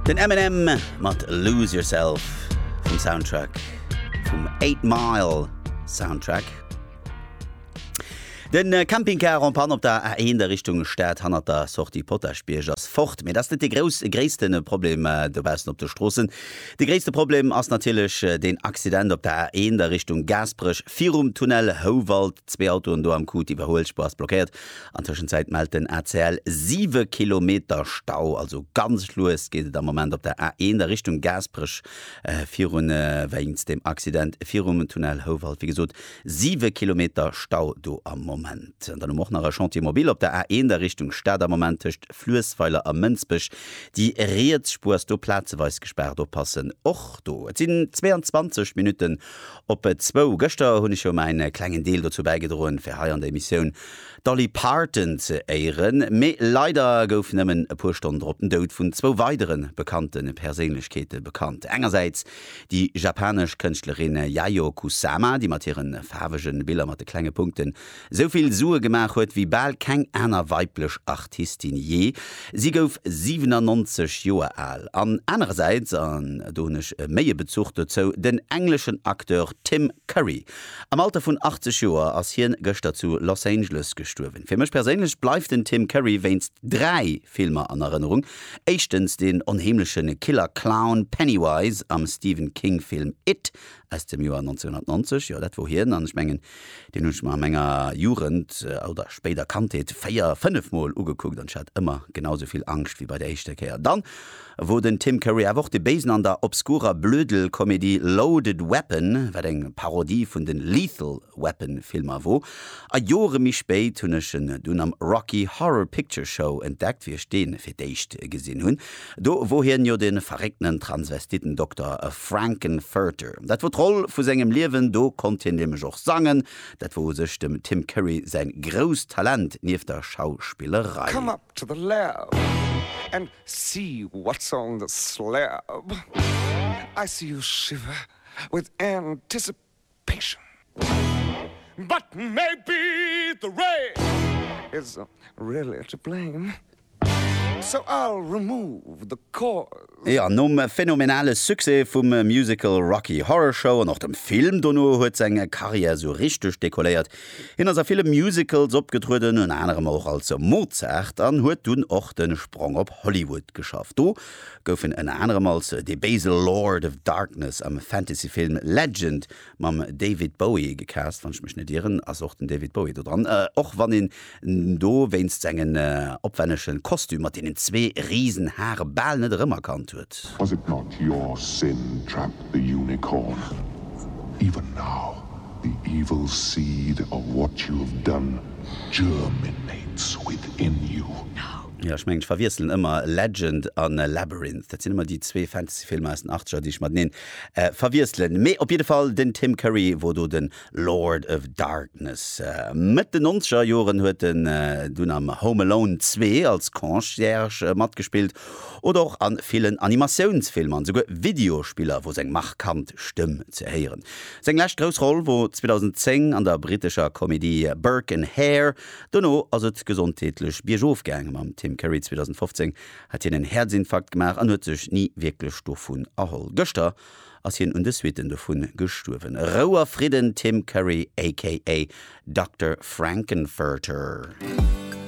Den Eminem mat Lose Yourself vum Soundtrack vum Eight Mile Soundtrack. Den äh, Campingcar en Pan op der A1 der Richtung Stad hannert der Sortie Potaschbierg ass fort. Mee dat ass net de grouss, gréissten Problem äh, dobaussen op de Stroossen. De gréisste Problem ass natierlech äh, den Accident op der A1 der Richtung Gaasperech virum Tunnel Houwald. Zwee Autoen do am Coup d'iwwerhuelspur ass blockéiert. An Tëschenzäit mellt den ACL siwe Kilometer Stau. Also ganz lues geet et am Moment op der A1 a Richtung Gaasperech virun, wéinst dem Accident virum Tunnel Houwald. Wéi gesot, siwe Kilometer Stau do am Moment. An dann hu mer och nach e Chantier mobil op der A1 a Richtung Stad am Moment tëscht Fluessweiler a Mënsbech. Déi riets Spuer ass do plazeweis gespaart, oppassen och do. Et sinn 22 Minutten Op zwou. Gëschter hunn ech jo mäin klengen Deel dozou bäigedroen, fir hei an der Emissioun d'Dolly Parton ze éieren. Mee leider gouf nëmmen e puer Stonnen drop den Doud vun zwou weidere bekannte Perséinlechkeete bekannt. Engersäits déi japanesch Kënschtlerin Yayoi Kusama, déi mat hire faarwege Biller mat de klenge Punkten Sou vill Sue gemaach huet wéi bal keng aner weiblech Artistin jee, si gouf 97 Joer al, an anerersäits, an do hunn ech méi e Bezuch dozou, den engleschen Acteur Tim Curry. Am Alter vun 80 Joer ass hien gëschter zu Los Angeles gestuerwen. Fir mech perséinlech bleift den Tim Curry wéinst dräi Filmer an Erënnerung, éischtens den onheemleche Killer-Clown Pennywise am Stephen King-Film It, Aus dem Joer 1990, jo, dat wor hien. An ech mengen, deen hunn ech mer a menger Jugend oder spéider Kandheet véier, fënnef Mol ugekuckt an ech hat ëmmer genau esou vill Angscht wéi bei der éischter Kéier. Dann wor den Tim Curry awer och de Béisen an der obskurer Blödel-Komedie Loaded Weapon, wat eng Parodie vun den Lethal Weapon Filmer wor, a Jore méi spéit hunn ech en dunn am Rocky Horror Picture Show entdeckt, wéi ech dee fir d'éischt gesinn hunn. Do wor hien jo de verréckten Transvestitten-Dokter Frank-N-Furter. Dat wor d'Roll vu sengem Liewen, do konnt hien nämlech och sangen. Dat wor u sech dem Tim Curry säi grousst Talent nieft der Schauspillerei. Come up to the lab and see what's on the slab I see you shiver with anticipation Passion. But maybe the rain is really to blame, so I'll remove the cause. Jo, nom phänomenale Succès vum Musical Rocky Horror Show an och dem Film dono huet seng Carrière sou richteg dekolléiert. Hien ass a ville Musicals opgetrueden, ënner anerem och als Mozart an huet dunn och de Sprong op Hollywood geschafft. Do gouf en ënner anerem als dee béise Lord of Darkness am Fantasyfilm Legend mam David Bowie gecast, wann ech mech net ieren, ass och den David Bowie do dran, och wann een do wéinst sengen opwännege Kostüm mat deenen zwee risen Hare bal net erëmerkannt huet. Was it not your sin trapped the unicorn? Even now the evil seed of what you have done germinates within you. Jo, ech mengen, ech verwiesselen ëmmer Legend a Labyrinth. Dat sinn ëmmer déi zwee Fantasyfilmer aus den Achtzeger, déi ech mateneen verwiesselen. Mee op jidde Fall, den Tim Curry wor do de Lord of Darkness. Mëtt den Nonzeger Joren huet en dunn am Home Alone 2 als Concierge matgespillt oder och a villen Animatiounsfilmer an esouguer Videospiller wor seng markant Stëmm ze héieren. Seng lescht grouss Roll wor 2010 an der brittescher Komedie Burke and Hare, Dono ass et gesondheetlech biergof gaang. Mam Tim Curry 2015 hat hien en Häerzinfarkt gemaach an huet sech ni wierklech dovun erholl. Gëschter ass hien un de Suitten dovu gestuerwen. Rou a Fridden Tim Curry aka Dokter Frank-N-Furter.